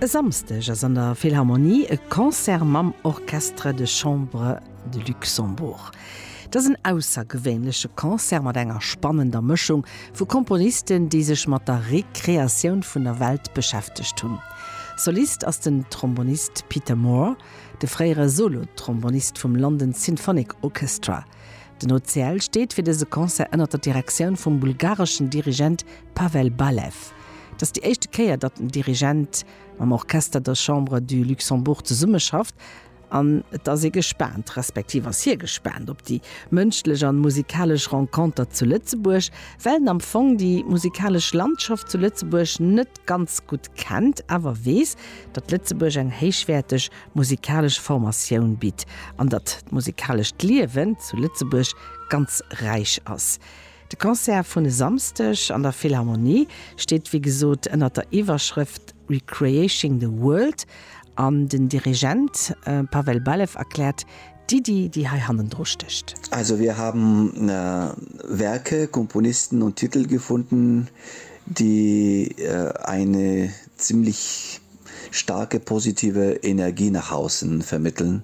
E Samsdeg ass an der Philharmonie e Concert mam Orchestre de Chambre de Luxembourg. Et ass en aussergewéinleche Concert mat enger spannender Mëschung vu Komponisten, déi sech mat der Rekreatioun vun der Welt beschäftegt hunn. Solist ass den Trombonist Peter Moore, de fréiere Solo-Trombonist vum London Symphonic Orchestra. Den OCL steet fir dëse Concert ënner der Direktioun vum bulgareschen Dirigent Pavel Balev. Et ass déi éischte Kéier, datt den Dirigent mam Orchestre de Chambre du Luxembourg zesummeschafft, an et ass ee gespaant, respektiv ass hie gespaant, op déi mënschlech an musikalesch Renconter zu Lëtzebuerg, well en am Fong déi musikalesch Landschaft zu Lëtzebuerg net ganz gutt kennt, awer weess, datt Lëtzebuerg eng héichwäerteg musikalesch Formatioun bitt an datt d'musikalescht Liewen zu Lëtzebuerg ganz räich ass. De Concert vun e Samsdeg an der Philharmonie steet wéi gesot ënnert der Iwwerschrëft Recreating the World an den Dirigent Pavel Balew erkläert d'Iddi déi hei hannendru stécht. Also wir haben Werke, Komponisten und Titel gefunden, die eine ziemlich starke positive Energie nach außen vermitteln.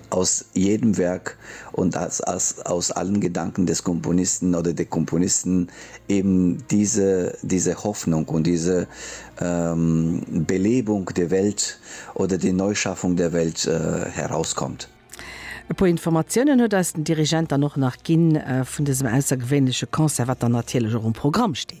Aus jedem Werk und aus allen Gedanken des Komponisten oder der Komponisten eben diese, diese Hoffnung und diese Belebung der Welt oder die Neuschaffung der Welt herauskommt. E puer Informatiounen huet eis den Dirigent dann och nach ginn vun dësem aussergewéinleche Concert, wat dann natierlech och um Programm steet.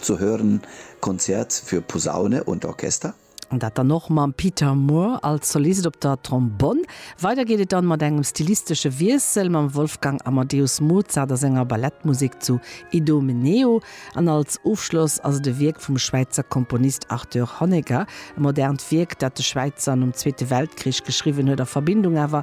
Zu hören, Konzert für Posaune und Orchester. An dat dann och mam Peter Moore als Solist op der Trombonn. Weider geet et dann mat engem stilistesche Wiessel mam Wolfgang Amadeus Mozart a senger Ballettmusek zu Idomeneo. An als Ofschloss ass et e Wierk vum Schwäizer Komponist Arthur Honegger, e modernt Wierk, dat de Schwäizer nom Zweete Weltkrich geschriwwen huet, a Verbindung awer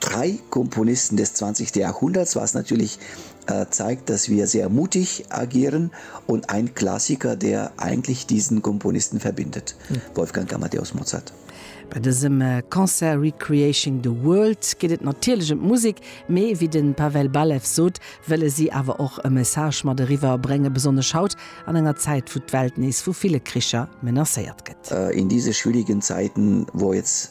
Drei Komponisten des 20. Jahrhunderts, was natürlich zeigt, dass wir sehr mutig agieren, und ein Klassiker, der eigentlich diesen Komponisten verbindet, Wolfgang Amadeus Mozart. Bei dësem Concert Recreating the World geet et natierlech ëm d'Musek, mee wéi de Pavel Balew sot, wëlle si awer och e Message mat eriwwer bréngen, besonnesch haut an enger Zäit, wou d'Welt nees vu ville Kricher menacéiert gëtt. In diese schwierigen Zeiten, wo jetzt.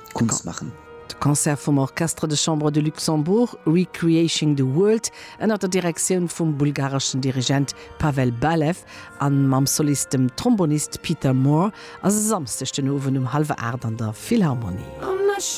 Kunst maachen. De Concert vum Orchestre de Chambre de Luxembourg, Recreating the World, ënnert der Direktioun vum bulgareschen Dirigent Pavel Balev a mam Solist, dem Trombonist Peter Moore, ass e Samsdeg den Owend um hallwer 8 an der Philharmonie.